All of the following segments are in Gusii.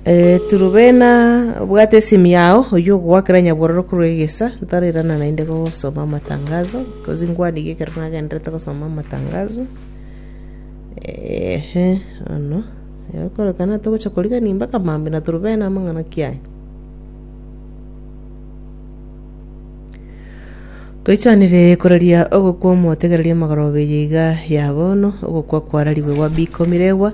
Turubena, bwata esimu yao oyio ogogoakera nyabororo korwa egesa, ntarerana naende gosoma amatangazo, because nkwaniga ekero nagendererete gosoma amatangazo. Ehe, ono, egokorekana togocha korigania mpaka maambia na turubena amang'ana ki aya? Toichanire koraria ogokwa omotegereria amagoroba eye iga ya bono, ogokwa kwararigwe gwa Biko Miregwa,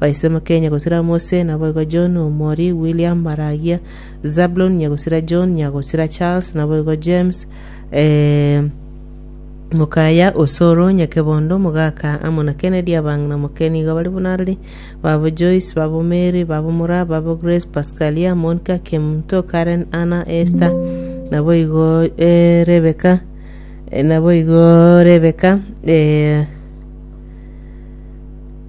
Baisemo Kenya gosira Mose, naboigo John omori William Maragia, Zablon nyagosira John, nyagosira Charles, naboigo James, eh, Mokaya Osoro Nyakebondo Mogaka amo na Kennedy abang'ina moke nigo bari buna arari babo Joyce babo Mary babo Mura babo Grace Pascalia Monica Kemto Karen Anna Esther naboigo eh, Rebecca eh, naboigo Rebecca eh,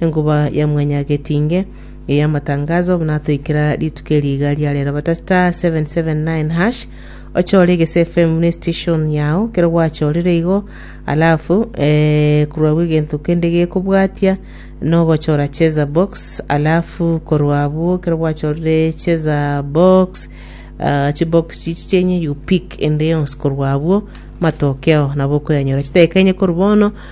Enkuba ya Mwanyagetinge ey'amatangazo natoikera rituko eri iga ria rero bata star 779 hash ochore egese FM buna station yao kero gwachorire igo alafu eh, korwa abwo egento kende gekobwatia nogochora cheza box alafu korwa abwo kero gwachorire cheza box ah, chibox chichi chenye you pick ende yonsi korwa abwo matokeo nabo okoyanyora chidakika enye korwa bono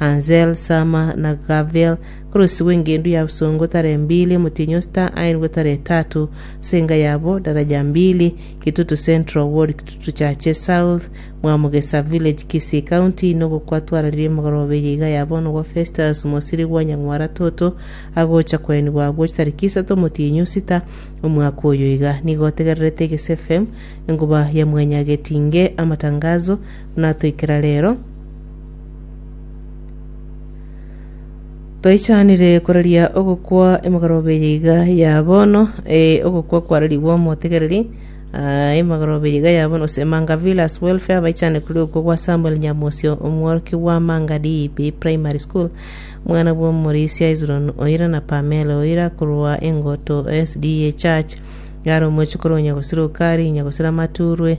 Anzel, Sama, na Gaviel, kor'onsi gw'engendu ya bosongo tara embili, omotienyi o sita aenigwe tara etato, ase enga yabo daraja mbili, Kitutu Central, ward Kitutu Chache South, Mwamugesa Village, Kisii County, inwe gokwa twararirie emegoroba eye iga ya bono gwa Festus Mosiri gwa Nyang'wara Toto, agocha koenigwa agwo chitariki isato omotienyi o sita omwaka oyo iga. Nigo otegererete Eges FM, enkuba ya mwanyagetinge, amatangazo, buna atoikera rero, Toichanire koraria ogokwa emegorobe eye iga ya bono, eh, ogokwa kwararigwe omotegereri, ah, emegorobe eye iga ya bono gose Emanga Villas Welfare baichane koria okwo gwa Samuel Nyamosio omworokia bwa Amanga DEP Primary School, mwana bw'omorisia Hezron Oira na Pamela Oira korwa Engoto SDA Church, yare omochikoro onya gosira okari, onya gosira amaturwe,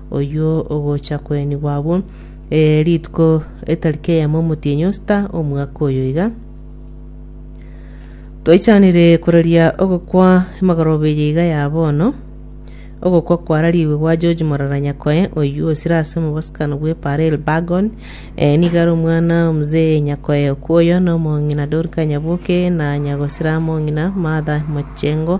oyio ogocha koenigwa abwo, eh, rituko etariki eyemo omotienyi o sita omwaka oyo iga. Toichanire koraria ogokwa emagoroba eye iga ya bono, ogokwa kwarariwe gwa George Morara Nyakoe, oyio osire ase omobosokano bwe Parel Bagon, eh, nigo are omwana o Mzee Nyakoe okwoyo, na omong'ina Dorika Nyaboke, na nyagosira mong'ina Martha Mochengo,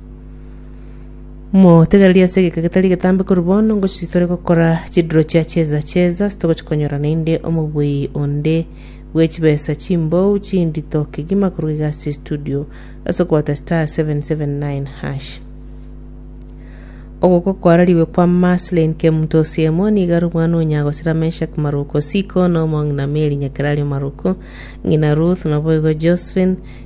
Motegererie ase egeka getari getambe korwa bono, ngochi tore gokora chidiro chia cheza cheza, ase togochi konyora naende omoboi onde bwe chibesa chimbou chindito kegima korwa iga ase estudio ase okoata star 779 hash. Ogoko kwarariwe kwa Marceline Kemutosiemo nigo are omwana o Nyagosira Meshack Maruko Siko na Omong'ina Mary Nyakerari Maruko, ng'ina Ruth, naboigo Josephine,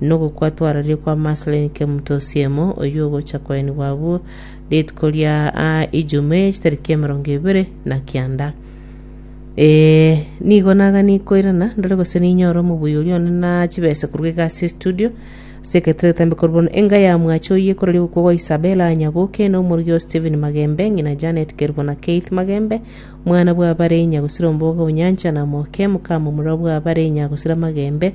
nogokwa twararie kwa Marceline Kemuto Osiemo, oyio ogocha koenigwa abwo rituko ria Ijumaa chitariki emerongo ebere na kianda. Ee, nigo nagani koirana ndore gose ninyore omobuya oria one na chibesa korwa egasi estudio ase egetare getambe korwa bono enga ya mwache oyio ekora rigokwa gwa Isabella Nyaboke na omorigia o Stephen Magembe ng'ina Janet Kerubo na Keith Magembe mwana bwa bare Nyagusira Ombogo Onyancha na Moke mokama omorwa bwa bare Nyagusira Magembe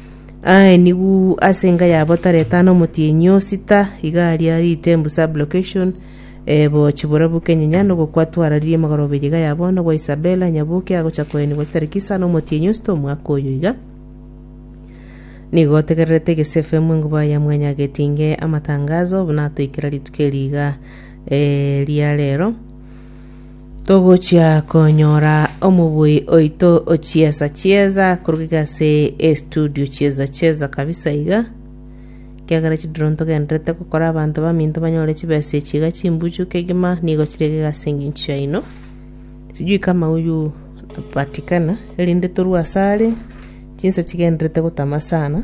Aenigu ase enga yabo tareta na omotienyi o sita iga aria Ritembu sub location ebo chiborabu kenyinya nogokwa twararirie magorobe iga ya bono gwa Isabella Nyabuke agocha koenigwa chitariki isa na omotienyi o sita omwaka oyo iga nigo otegererete egese fm enguba ya mwanya agetinge amatangazo buna atoikera rituko eri iga eh, ria rero. Togochia konyora omobui oito ochiesa chiesa korwa gase estudio chiesa chiesa kabisa iga, ekiagera chidiro ntogenderete gokora abanto baminto banyore chibesa echi iga chimbuchu kegima nigo chirege gase engencho yaino. Sijui kama huyu atapatikana erinde torue asare chinsa chigenderete gotama sana.